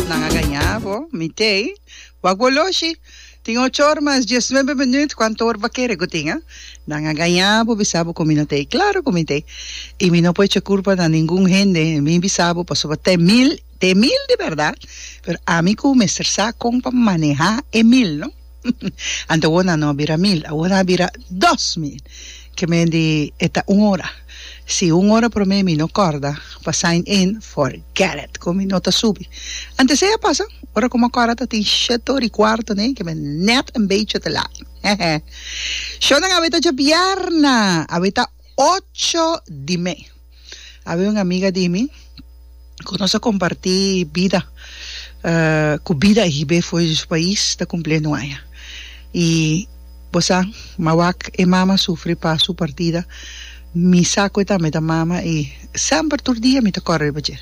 Nan a gañá bo, mi t'ei. Wak bo loshi. Tin ocho or mas diesnuebe minüt, kuantu or bo kere ku tin, a? Nan a gañá bo, bisa bo ku mi no t'ei. Klaru ku mi t'ei. I mi no por echa kurpa na ningun hende. Mi bisa bo pasobra t'e mil, t'e mil di bèrdat, pero ami ku mester sa kon pa manehá e mil, no? Ante awor no a bira mil, awor a bira dos mil. Ke mende e ta un ora. Si un ora promé mi no kòrda pa sign in, forget it, kon mi no ta subi. Ante esei a pasa, ora ku mi a kòrda ta tin shete ora i kuarto nei, ke mi nèt un bechi te laat. Hehe. Shownan a weta dje bièrnè, a weta ocho di me. Awe un amiga di mi cu nos a comparti bida cu bida hibe fuera di su pais ta cumpli e nuaya y bo sa ma wak e mama sufri pa su partida mi sa cu e tambe ta mama y semper tur dia mi ta core riba dje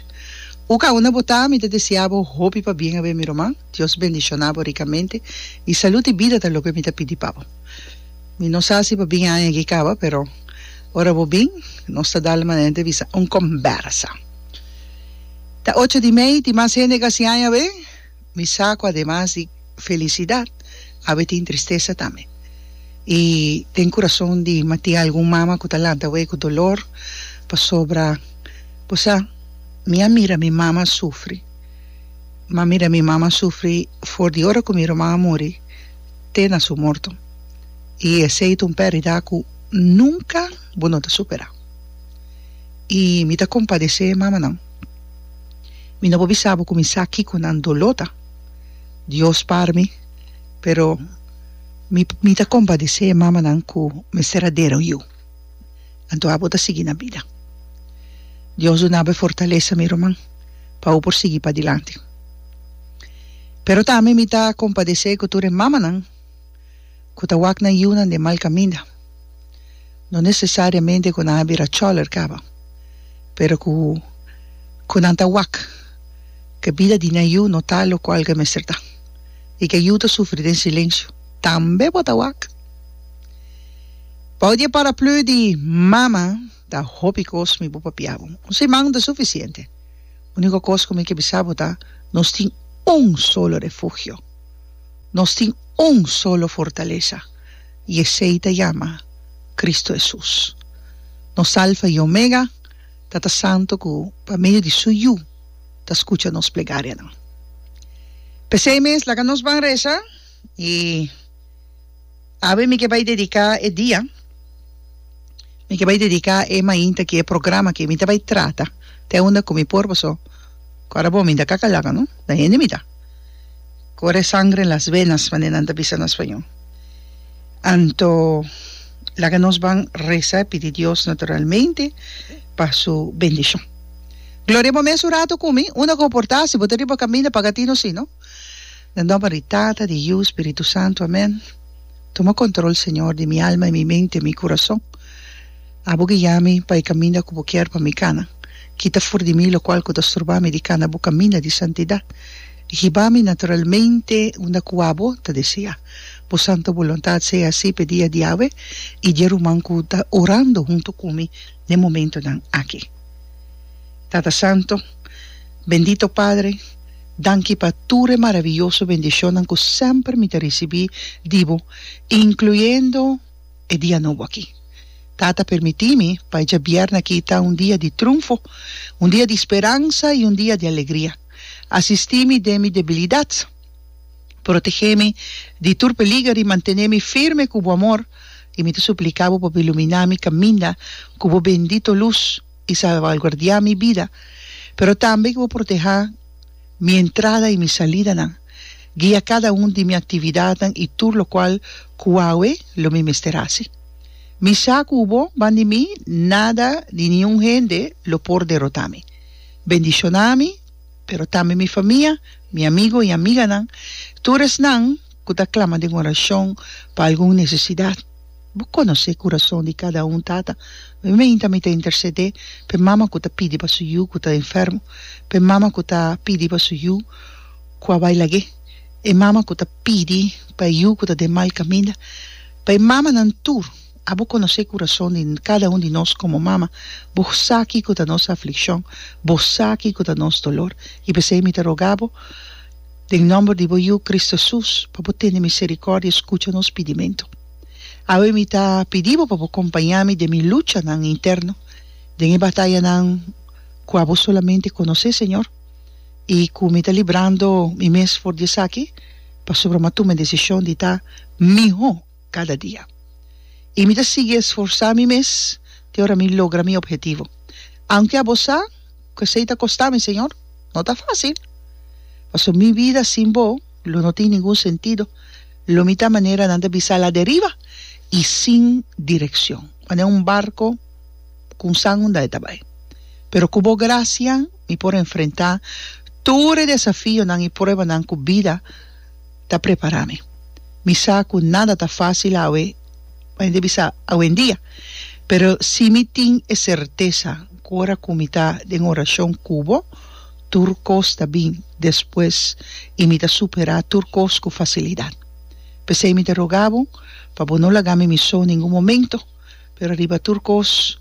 un caunda bo ta mi ta desea bo hopi pa bien awe mi ruman Dios bendiciona bo ricamente y salud y bida ta loke mi ta pidi pa bo. Mi no sa si bo bin aña aki kaba, pero ora bo bin, nos ta dal manente bisa un kombersa. Ta ocho di mei, tin mas hende ku a siña aña awe. Mi sa ku ademas di felisidat, awe tin tristesa tambe. I den kurason di mi a tin algun mama ku ta lanta awe ku dolor, pasobra bo sa, mi a mira mi mama sufri. Mi a mira mi mama sufri for di ora ku mi ruman a muri. te na su morto, i esei ta un perdida ku nunka bo no ta supera. I mi ta kompadesé e mamanan. Mi no por bisa bo ku mi sa kiko nan doló ta. Dios par mi, pero mi mi ta kompadesé e mamanan ku mester a dera un yu. anto abo ta sigui na bida. Dios dunabo e fortalesa mi ruman pa bo por sigui padilanti. Pero tambe mi ta kompadesé ku tur e mamanan ku ta wak nan yunan den mal kaminda. No nesesariamente ku nan a bira chòler kaba, pero ku ku nan ta wak ku e bida di nan yu no ta lokual ku e mester ta i ku e yu ta sufri den silensiu, tambe bo ta wak. Bou di e paraplu di mama ta hopi kos mi bo papia bo. Un siman ta sufisiente. Uniko kos ku mi ke bisa bo ta nos tin un solo refugio. Nos tin un solo fortalesa i esei ta yama Kristu Hesus. Nos Alfa i Omega, Tata Santu ku pa medio di su Yu ta skucha nos plegarianan. P'esei mes laga nos ban resa. Y awe mi ke bai dedica e dia, mi ke bai dedica e mainta ki e programa ke mi ta bai trata te unda ku mi por paso ku ara bo mi ta kakalaka no, ta hende mi ta. Kore sangre en las venas manera nan ta bisa na spaño. Anto laga nos ban resa e pidi Dios naturalmente pa su bendishon. Gloria bo mes un rato ku mi, unda ku bo por ta si bo ta riba kaminda paga tino si no. Den nomber di Tata, di Yiu, Spiritu Santu, amén. Tuma control Señor di mi alma y mi mente, mi curazon. Abo guia mi pa e caminda cu bo kier pa mi cana. Kita for di mi locual cu ta sturba mi di cana bo caminda di santidad. Guiba mi naturalmente unda cu abo ta desea. Bo santo buluntad sea haci p'e dia diawe y di e ruman cu ta orando hunto cu mi n'e momentonan aki. Tata Santo, Bendito Padre, Danki pa tur e maravioso bendishonnan ku semper mi ta risibí di bo, inkluyendo e dia nobo akí. Tata, permití mi pa e djabièrnè akí ta un dia di trunfo, un dia di speransa i un dia di alegria. Asistí mi den mi debilidat, protegé mi di tur peliger i mantené mi firme ku bo amor. I mi ta supliká bo pa bo iluminá mi kaminda ku bo bendito lus. i salvaguardiá mi bida, pero tambe ku bo protehá mi entrada i mi salidanan, guia kada un di mi aktividatnan i tur lokual ku awe lo mi mester hasi. Mi sa ku bo ban di mi nada ni niun hende lo por derotá mi. Bendishoná mi, pero tambe mi famia, mi amigu i amiganan, tur esnan, ku ta klama den orashon pa algun nesesidat. Bo konosé e kurason di kada un, Tata. Mi meinta mi ta intersedé p'e mama ku ta pidi pa su yu ku ta enfermo, p'e mama ku ta pidi pa su yu ku a bai lag'é, e mama ku ta pidi pa e yu ku ta den mal kaminda, pa e mamanan tur. A Bo konosé e kurason di kada un di nos komo mama. Bo sa kiko ta nos aflikshon. Bo sa kiko ta nos dolor. I p'esei mi ta roga Bo. Den nòmber di bo Yu Kris Hesus, pa bo tende miserikòrdia skucha nos pidimentu. Awe mi ta pidi bo pa bo kompañá mi den mi luchanan interno, den e batayanan ku abo solamente konosé, Señor, i ku mi ta librando mi mes for di esaki, pasobra mi a tuma e desishon di ta mihó. kada dia. I mi ta sigui esforsá mi mes te ora mi logra mi ophetivo. Aunke abo sa ku esei ta kostá mi, Señor, no ta fásil. Pasobra mi bida sin Bo lo no tin ningun sentido, lo mi ta manera nan ta bisa a laderiba i sin direkshon, manera un barko ku un san unda e ta bai. Pero ku Bo grasia mi por enfrentá tur e desafionan i pruebanan ku bida. ta prepará mi. Mi sa ku nada ta fásil awe, mane ta bisa awendia, pero si mi tin e sertesa ku ora ku mi ta den orashon ku bo, tur kos ta bin despues i mi ta superá tur kos ku fasilidat. P'esei mi ta rogá bo pa bo no laga mi mi so ningun momento, pero riba tur kos,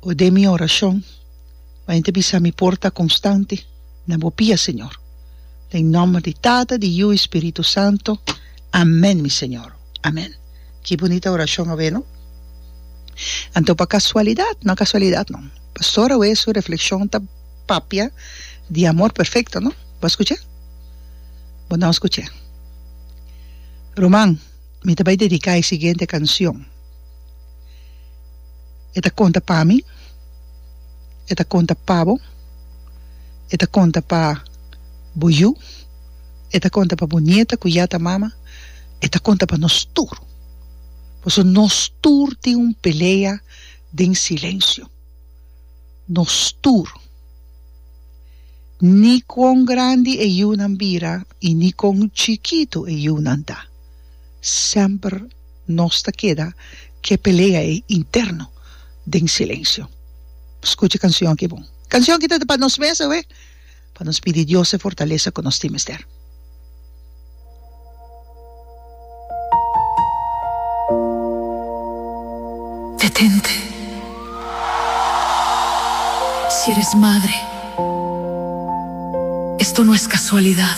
bo den mi orashon. pa hende bisa mi por ta konstante na bo pia Señor. Den nòmber di Tata, di Yu i Spiritu Santu, amèn mi Señor. Amèn. Ki bunita orashon awe no? Anto pa kasualidat? No kasualidat no. Pastor awe su reflekshon ta papia di amor perfekto no? Bo a skuch'e? Bo no a skuch'e. Ruman. Mi ta bai dediká e siguiente kansion. E ta konta pa mi, e ta konta pa bo, e ta konta pa bo yu, e ta konta pa bo nieta ku ya ta mama, e ta konta pa nos tur, paso nos tur tin un pelea den silensio, nos tur, ni kon grandi e yunan bira i ni kon chikitu e yunan ta. semper nos ta keda k'e pelea ei interno den silensio. Skucha e kansion aki bon. E kansion aki ta pa nos mes awe, pa nos pidi Dios e fortalesa ku nos tin mester. Detente. Si eres madre, esto no es casualidad.